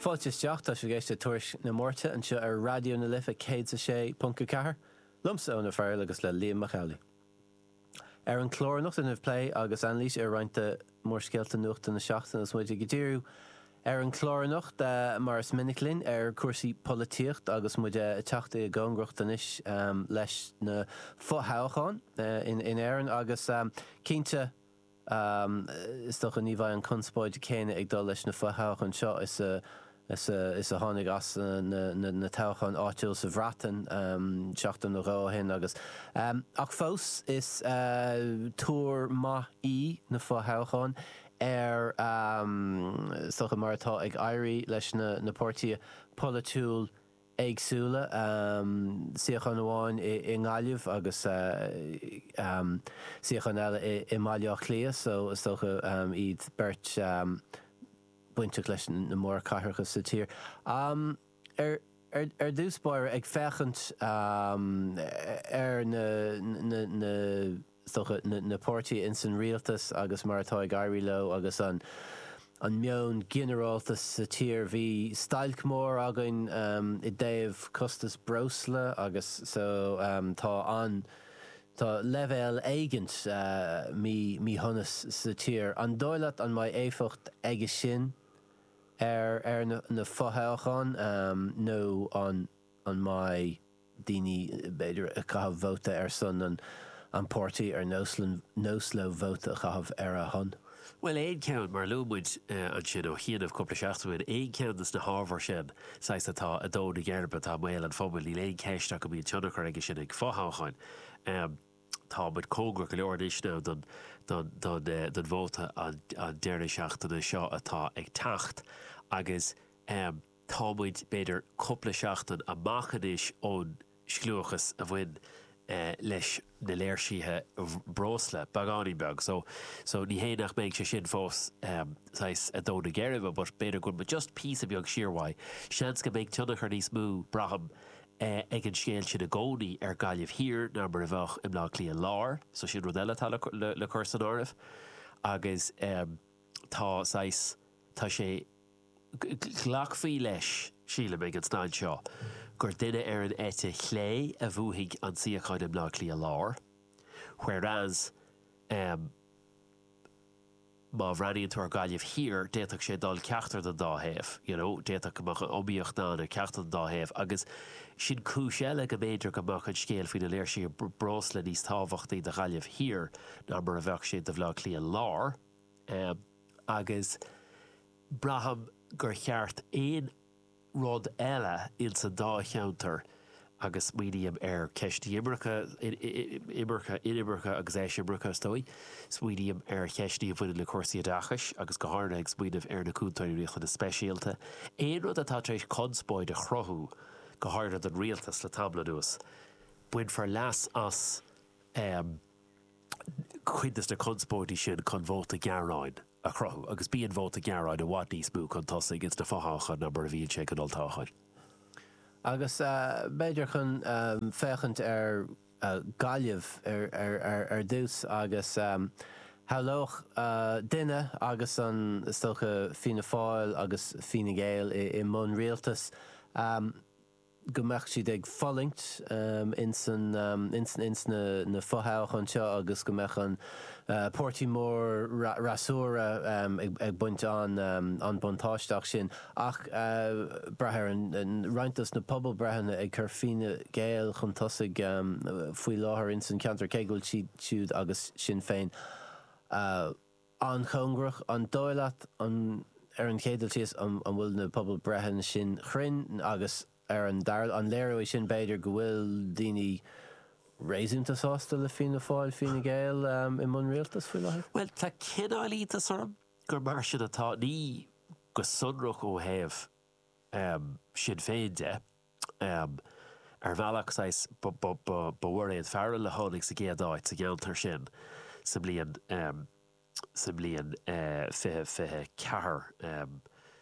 Fáilte isteach, tá sibh ag éisteacht le Tuairisc na Máirte anseo ar Raidió na Life 106.4, liomsa Eoin O'Farrell agus le Liam Mac Amhlaigh. Ar an chlár anocht déanfaimid plé agus anailís ar roinnt de mhórscéalta nuachta na seachtaine agus muid ag díriú ar an chlár anocht, mar is minic linn, ar chúrsaí polaitíocht agus muid ag teacht i gcóngaracht anois leis na fo-thoghcháin in Éirinn agus cinnte, Is dócha ní bheidh an conspóid chéanna ag dul leis na fo-thoghcháin seo is a tháinig as na toghcháin áitiúil sa Bhreatain seachtain nó dhó ó shin agus, ach fós, is tuar maith í na fo-thoghcháin ar, is dócha, mar atá ag éirí leis na páirtithe polaitiúil éagsúla, suíochán amháin i nGaillimh agus suíochán eile i mBaile Átha Cliath so is dócha iad beirt bainteach leis na mórchathracha sa tír. Ar dtús báire, ag féachaint ar na. rogha na páirtithe ins an rialtas agus mar atá ag éirí leo agus an an meon ginearálta sa tír. Bhí stailc mór againn i dtaobh costas breosla agus so tá an tá leibhéal éigint mí míshonas sa tír. An dóigh leat an mbeidh éifeacht aige sin ar ar na fothoghcháin nó an an mbeidh daoine b'fhéidir ag caitheamh vóta ar son an páirtí ar nós leo vóta a chaitheamh ar a shon. Bhuel, aon cheann, mar a luaigh muid ansin ó chianaibh cúpla seachtain ó shin, aon cheann de na hábhair sin, saghas, atá ag dó na geirbe, atá i mbéal an phobail, níl aon cheist ach go mbíonn tionchar aige sin ag fothoghcháin. Tá muid cóngarach go leor anois now don vóta an deireadh seachtaine seo atá ag teacht agus. Tá muid, b'fhéidir, cúpla seachtain amach anois ón scliúchas a bhain leis na léirsithe breosla, beagáinín beag, so, so ní hé nach mbeidh sé sin fós saghas a' dó na geirbe but b'fhéidir go bhfuil muid just píosa beag siar uaidh. Seans go mbeidh tionchar níos mó, braithim, ag an scéal sin i gcónaí ar Ghaillimh Thiar ná mar a bheadh i mBleá Cliath Láir, so sin rud eile atá le cur san áireamh agus tá saghas, tá sé, Glacfaí leis, sílim, ag an staid seo gur duine ar an eite chlé a bhuafaidh an suíochán i mBleá Cliath Láir, whereas má bhreathnaíonn tú ar Ghaillimh Thiar, d'fhéadfadh sé dul ceachtar den dá thaobh, you know, d'fhéadfadh go mbeadh an iomaíocht ann ar ceachtar den dá thaobh agus sin cúis eile go mb'fhéidir go mbeadh an scéal faoi na léirsithe breosla níos tábhachtaí do Ghaillimh Thiar ná mar a bheadh sé do Bhleá Cliath Láir. agus braithim gur ceart, aon rud eile ins an dá cheantar agus smaoiním ar cheist imirce, imirce, inimirce agus eisimirce is dóigh, smaoiním ar cheisteanna a bhaineann le cúrsaí oideachais agus go háirithe ag smaoineamh ar na Cúntóirí Riachtanais Speisialta, aon rud atá tar éis conspóid a chruthú go háirithe don Rialtas le tamall anuas, bainfear leas as. cuid de na conspóidí sin chun vóta gearáin a chruthú, agus bíonn vóta gearáin i bhfad níos mó chun tosaigh ins na fo-thoghcháin ná mar a bhíonn sé ag an olltoghchán. Agus b'fhéidir chun féachaint ar Ghaillimh ar dtús, agus shamhlódh duine, agus is dócha Fianna Fáil agus Fine Gael i mbun rialtais, go mbeadh siad ag fulaingt insna, ins na fothoghcháin seo agus go mbeadh an páirtí mór freasúra ag baint an buntáisteach sin. Ach braithim roinnt dos na pobalbhreitheanna ag cur Fine Gael chun tosaigh faoi láthair ins an ceantar cé go bhfuil siad agus Sinn Féin an-chóngarach, an dóigh leat, ar an chéad dul síos, an bhfuil na pobalbhreitheanna sin cruinn agus ar an dara, an léireoidh sin b'fhéidir go bhfuil daoine réasúnta sásta le Fianna Fáil, Fine Gael i mbun rialtais faoi láthair? Bhuel, tá cineál iontas orm gur mar sin atá, ní go sonrach ó thaobh Sinn Féin de. Ar bhealach, saghas, ba í Mairéad Farrell a tháinig sa gcéad áit sa gceantar sin sa mbliain sa mbliain 2024,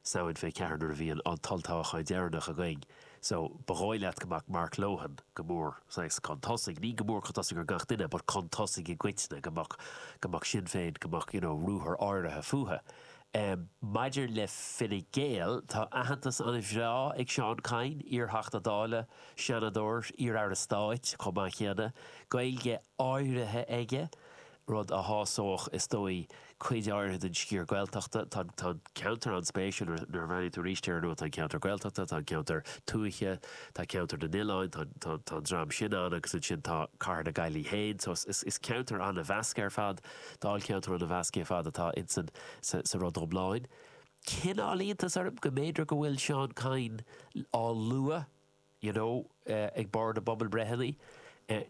Samhain 24 nuair a bhí an t-olltoghchán deireanach againn. So, ba dhóigh leat go mbeadh Mark Lohan go mór, saghas, chun tosaigh, ní go mór chun tosaigh ar gach duine, but chun tosaigh i gcoitinne, go mbeadh, go mbeadh Sinn Féin, go mbeadh, you know, ruathar áirithe fúthu. Maidir le Fine Gael, tá aitheantas an-bhreá ag Seán Kyne, iarTheachta Dála, Seanadóir, iarAire Stáit chomh maith céanna, Gaeilge áirithe aige, rud a shásódh, is dóigh, cuid áirithe den sciar Gaeltachta. Tá an ceantar an-spéisiúil, nuair a bhreathnaíonn tú air, y'know, tá an ceantar Gaeltachta, tá an ceantar tuaithe, tá ceantar na n-oileáin, tá an dream sin ann agus ansin tá cathair na Gaillimhe féin. So is ceantar an-mheasctha ar fad. Dáilcheantar an-mheasctha ar fad atá insan sa rud iomlán. Cineál iontas orm go mb'fhéidir go bhfuil Seán Kyne á lua, you know, ag barr na bpobalbhreitheanna.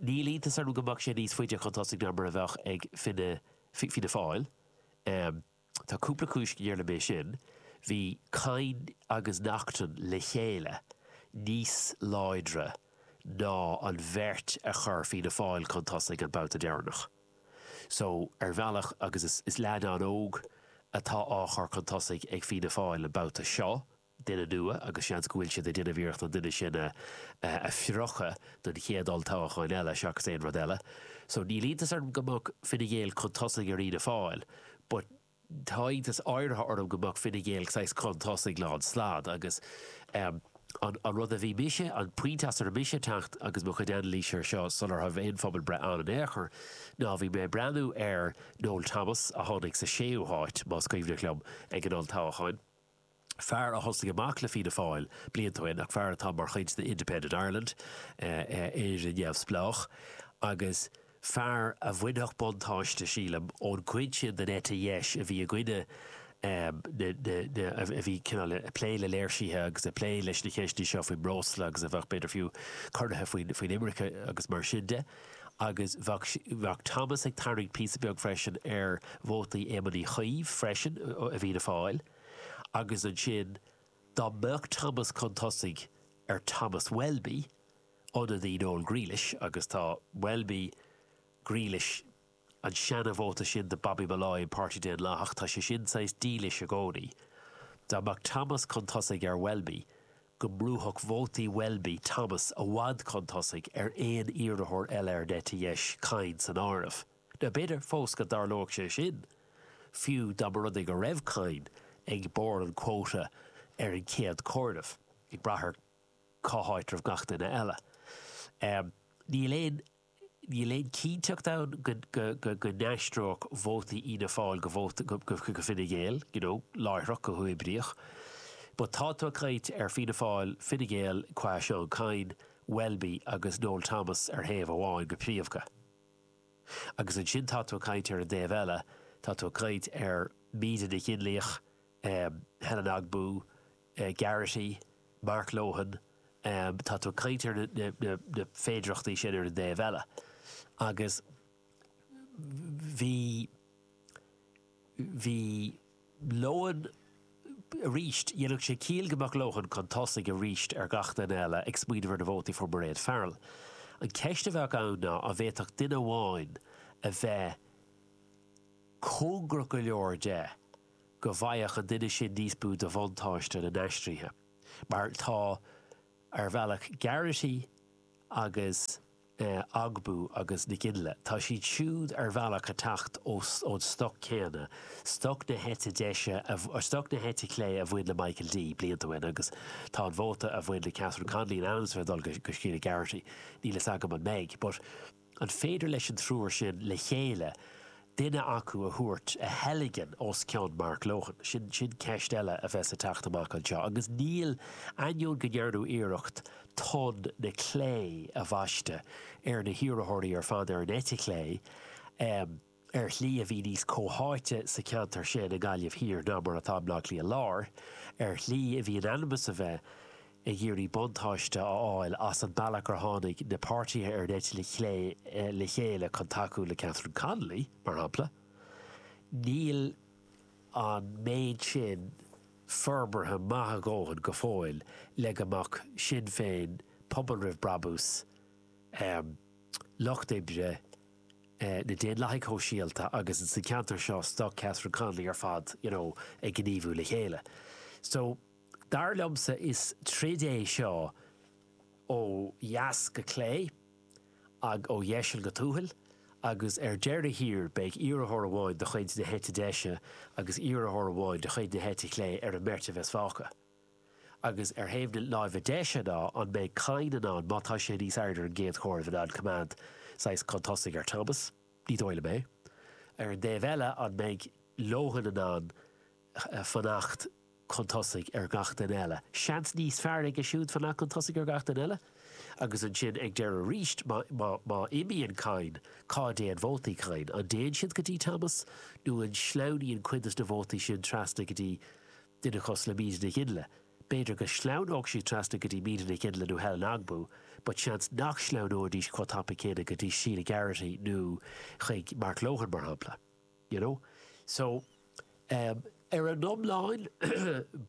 Níl iontas orm go mbeadh sé níos faide chun tosaigh ná mar a bheadh ag Fianna Fáil. Tá cúpla cúis dar liom leis sin, bhí Kyne agus Naughton le chéile níos láidre ná an bheirt a chuir Fianna Fáil chun tosaigh an babhta deireanach. So, ar bhealach, agus is leaid an-óg atá á chur chun tosaigh ag Fianna Fáil an babhta seo, duine nua agus seans go bhfuil siad ag déanamh iarracht an duine sin a phriocadh don chéad olltoghchán eile seachas aon rud eile so níl iontas orm go mbeadh Fine Gael chun tosaigh ar Fhianna Fáil but tá iontas áirithe orm go mbeadh Fine Gael saghas chun tosaigh lánstad agus ehm an an rud a bhí mise an pointe as a raibh mise ag teacht agus mo chuid anailíse ar seo sular raibh aon phobalbhreith ann in aon chor ná bhí mé ag breathnú ar Noel Thomas a tháinig sa séú háit más cuimhneach liom ag an olltoghchán fear a thosnaigh amach le Fianna Fáil blianta ó shin ach fear atá mar chuid de Independent Ireland, Éire Neamhspleách, agus fear a bhainfeadh buntáiste, sílim, ón gcuid sin den eite dheis a bhí i gcoinne na, a bhí cineál ag plé le léirsithe agus ag plé leis na cheisteanna seo faoin mbreosla agus a bheadh, b'fhéidir fiú, corraithe faoin imirce agus mar sin de. Agus bheadh Thomas ag tarraingt píosa beag freisin ar vótaí Éamoin Uí Chuív freisin i bhFianna Fáil. Agus ansin, dá mbeadh Thomas chun tosaigh ar Thomas Welby, ionadaí Noel Grealish, agus tá Welby, Grealish, An seana vóta sin do Bobby Molloy, an Páirtí Daonlathach, tá sé sin saghas dílis i gcónaí. Dá mbeadh Thomas chun tosaigh ar Welby, go mbrúfadh vótaí Welby Thomas i bhfad chun tosaigh ar aon iarrathóir eile ar an eite dheis, Kyne san áireamh. Now b'fhéidir fós go dtarlóidh sé sin, fiú dá mba rud é go raibh Kyne ag barr an quota ar an chéad comhaireamh, ag brath ar cá háit a raibh gach duine eile. Níl aon níl aon chinnteacht ann go n-aistreodh vótaí Fhianna Fáil go Fine Gael, you know, láithreach, go huathoibríoch. But tá tú ag caint ar Fianna Fáil, Fine Gael qua Seán Kyne, Welby agus Noel Thomas ar thaobh amháin go príomha, agus ansin tá tú ag caint ar an dtaobh eile, tá tú ag caint ar Míde Nic Fhionnlaoich, Helen Ogbu, Garrity, Mark Lohan, tá tú ag caint ar na féidireachtaí sin ar an dtaobh eile agus bhí, bhí Lohan, arís, dhéanfadh sé ciall go mbeadh Lohan chun tosaigh arís ar gach duine eile ag smaoineamh ar na vótaí a fuair Mairéad Farrell. An cheist a bheadh ann ná an bhféadfadh duine amháin a bheith cóngarach go leor de go bhfaigheadh an duine sin níos mó de bhuntáiste na n-aistrithe, mar atá ar bhealach Garrity agus Ogbu agus Nic Fhionnlaoich. Tá siad siúd ar bhealach ag teacht ón stoc céanna, stoc na heite deise, stoc na heite clé a bhain le Michael D. blianta ó shin agus tá an vóta a bhain le Catherine Connolly in ainm is a bheith ag dul go Sheila Garrity. Níl a fhios agam an mbeidh. An féidir leis an triúr sin le chéile duine acu a thabhairt, a theilgean os cionn Mark Lohan? Sin ceist eile a bheas ag teacht amach anseo agus níl, ainneoin go ndearnadh iarracht tonn na clé a bhaisteadh ar na hiarrthóirí ar fad ar an eite chlé, ar shlí a bhí níos comhtháite sa cheantar sin i nGaillimh Thiar ná mar atá i mBleá Cliath Láir, ar shlí a bhí in ainm is a bheith ag iarraidh buntáiste a fháil as an bealach gur tháinig na páirtithe ar an eite le chéile chun tacú le Catherine Connolly, mar shampla. Níl an méid sin forbartha maith a dhóthain go fóill le go mbeadh Sinn Féin, pobal roimh brabús, lucht oibre na Daonlathaigh Shóisialta agus in san ceantar seo stoc Catherine Connolly ar fad you know ag gníomhú le chéile so dar liomsa is troid é seo ó dheas go clé agh ó dheiseal go tuathail agus ar deireadh thiar beidh iarrthóir amháin de chuid na heite deise agus iarrthóir amháin de chuid na heite clé ar an mbeirt a bheas fágtha. Agus ar thaobh na láimhe deise ná an mbeidh Kyne in ann, má tá sé níos airde ar an gcéad chomhaireamh, in ann coimeád saghas chun tosaigh ar Thomas? Ní dóigh liom é. Ar an dtaobh eile, an mbeidh Lohan in ann fanacht chun tosaigh ar gach duine eile? Seans níos fearr aige siúd fanacht chun tosaigh ar gach duine eile. Agus ansin ag deireadh arís, má imíonn Kyne, cá dtéann vótaí Kyne? An dtéann siad go dtí Thomas nó an sleamhnaíonn cuid de na vótaí sin trasna go dtí duine cosúil le Míde Nic Fhionnlaoich. B'fhéidir go sleamhnódh siad trasna go dtí Míde Nic Fhionnlaoich nó Helen Ogbu, but seans nach sleamhnóidís chomh tapaidh céanna go dtí Sheila Garrity nó chuig Mark Lohan, mar shampla, you know. So, em, ar an iomlán,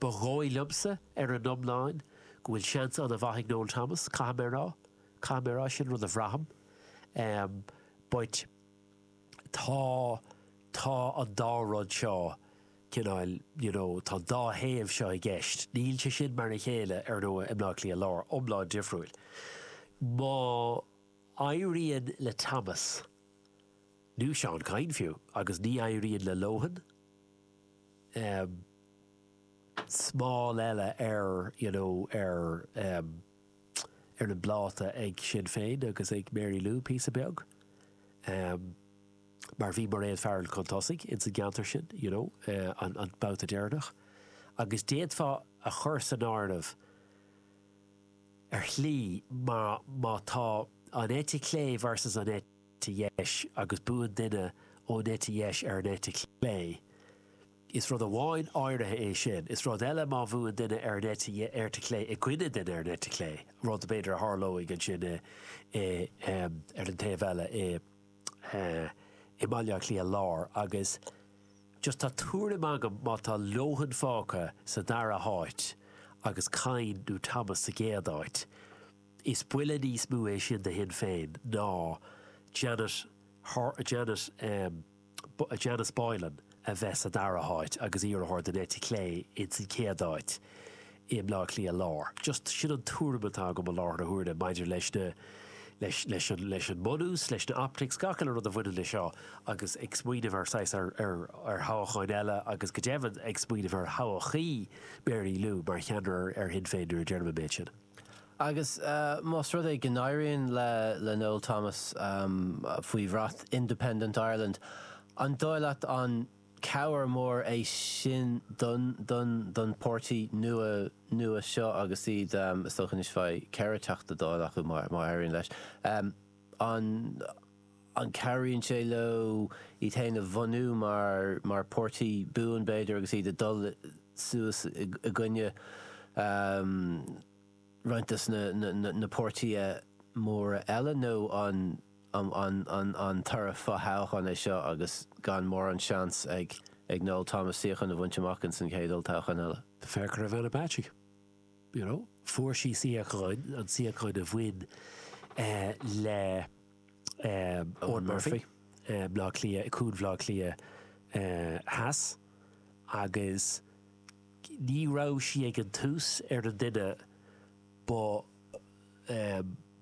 ba dhóigh liomsa, ar an iomlán, go bhfuil seans an-mhaith ag Noel Thomas, caithfidh mé a rá, caithfidh mé a rá, sin rud a bhraithim, em, but. tá, tá an dá rud seo, cineál, you know, tá an dá thaobh seo i gceist. Níl sé sin mar a chéile, ar ndóigh, i mBleá Cliath Láir, iomlán difriúil. Má éiríonn le Thomas, nó Seán Kyne fiú, agus ní éiríonn le Lohan, eh, smál eile ar, you know, ar, eh, ar an bpláta ag Sinn Féin agus ag Mary Lou píosa beag, mar bhí Mairéad Farrell chun tosaigh ins an gceantar sin, you know, an babhta deireanach, agus d'fhéadfá a chur san áireamh, ar shlí, mar má tá an eite chlé versus an eite dheis agus buann duine ón eite dheis ar an eite chlé, Is rud amháin áirithe é sin. Is rud eile má bhuann duine ar an eite, ar eite chlé, i gcoinne duine ar an eite chlé, rud b'fhéidir a tharlóidh ansin i, i, ar an taobh eile i, i mBaile Átha Cliath Láir agus just tá tuairim agam má tá Lohan fágtha sa dara háit agus Kyne nó Thomas sa gcéad áit, is buille níos mó é sin do Shinn Féin ná Janet, Janet, Janice Boylan a bheith sa dara háit agus iarrthóir den eite chlé ins an chéad áit i mBleá Cliath Lár. Just, sin an tuairim atá agam i láthair na huaire maidir leis na, leis, leis an, leis an mbunús, leis na optics, gach uile rud a bhaineann leis seo agus ag smaoineamh ar saghas, ar, ar, ar thoghacháin eile agus go deimhin ag smaoineamh ar thodhchaí Mary Lou mar cheannaire ar Shinn Féin nuair a deirim an méid sin. Agus más rud é go n-éiríonn le Noel Thomas, faoi bhrat Independent Ireland, an dóigh leat an cabhair mór é sin don, don pháirtí nua, nua seo agus iad, is dócha anois beidh ceithre Teachta Dála acu má éiríonn leis, an. an gcabhraíonn sé leo iad féin a bhunú mar páirtí buan, b'fhéidir, agus iad ag dul suas i gcoinne roinnt de na páirtithe móra eile, nó an toradh fo-thoghcháin é seo agus gan mórán seans ag Noel Thomas suíochán a bhaint amach ins an chéad olltoghchán eile? Féach ar Ivana Bacik, you know, fuair sí suíochán, an suíochán a bhain le. Eoghan Murphy, Bleá Cliath, Cuan Bhleá Cliath Theas, agus ní raibh sí ag an tús ar an duine ba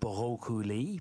dhóchúlaí.